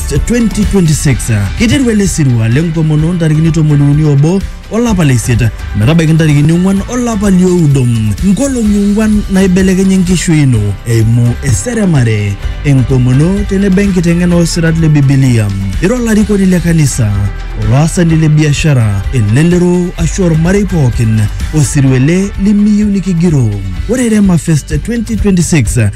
2026 kiteru ele sirua lenkomono ntarikini tomoniuni obo olapa le isiet metabaiki ntarikini ong'uan olapa lioudo nkolong'i ong'uan naibelekeny enkishui ino eimu eseremare enkomono tenebo enkiteng'ena osirat le bibilia ira olarikoni le kanisa olaasani le biashara elelero ashu ormarei pookin osirua ele limiyieu nikigiroo ore rema fest 2026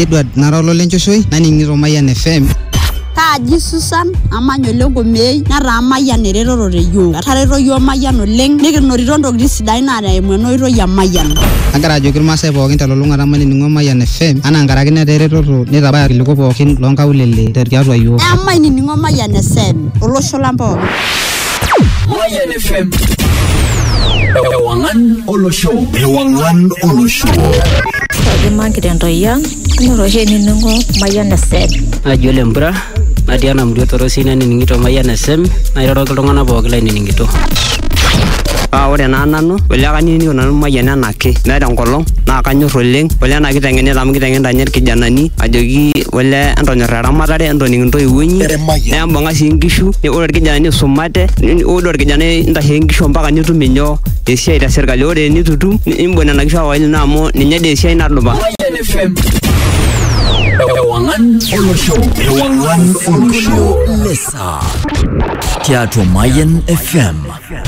Edward nara ololenchoshoe naning'ito Mayian FM. Kaaji Susan amanya ole Ngomei netaa Mayian eretoto te yiok. Etareto yiok Mayian oleng nikinotito ntokitin sidain naa eimu ena oitoi e Mayian. Agira ajoki irmaasai pookin telulung'ata mainining'o Mayian FM anaa nkaraki netaa eretoto neitabaya irkiliku pookin loonkaulele tiatua yiok. Emainining'o Mayian FM olosho lang pookin. Mayan FM. Ewangan Olo Show. Ewangan Olo Show. Kaji maki dan toyang, nyoroshe ninungo mayan FM. naji ole mpura natii ena murua torosi nanining'ito mayian esem nairoroki iltung'anak pooki lainining'ito paa ore naa nanu ole kanining'ito nanu mayian enake meeta enkolong naa kanyor oleng ole ena kiteng'enita amu kiteng'enita ninye irkijanani ajoki ole entonyorra eramatare entoning intoiwuo inyi Mayian. nembung'a sii nkishu ni- ore irkijanani isumate ni- ore orkijanai intashe nkishu mpaka nitum inyoo esiai te serkali ore enitu itum ni- imbung nena kishu awai ino amu ninye dee esiai nadupa Mayian FM. Ewangan Olosho. Ewangan Olosho. Lesa. Tiatua Mayan FM.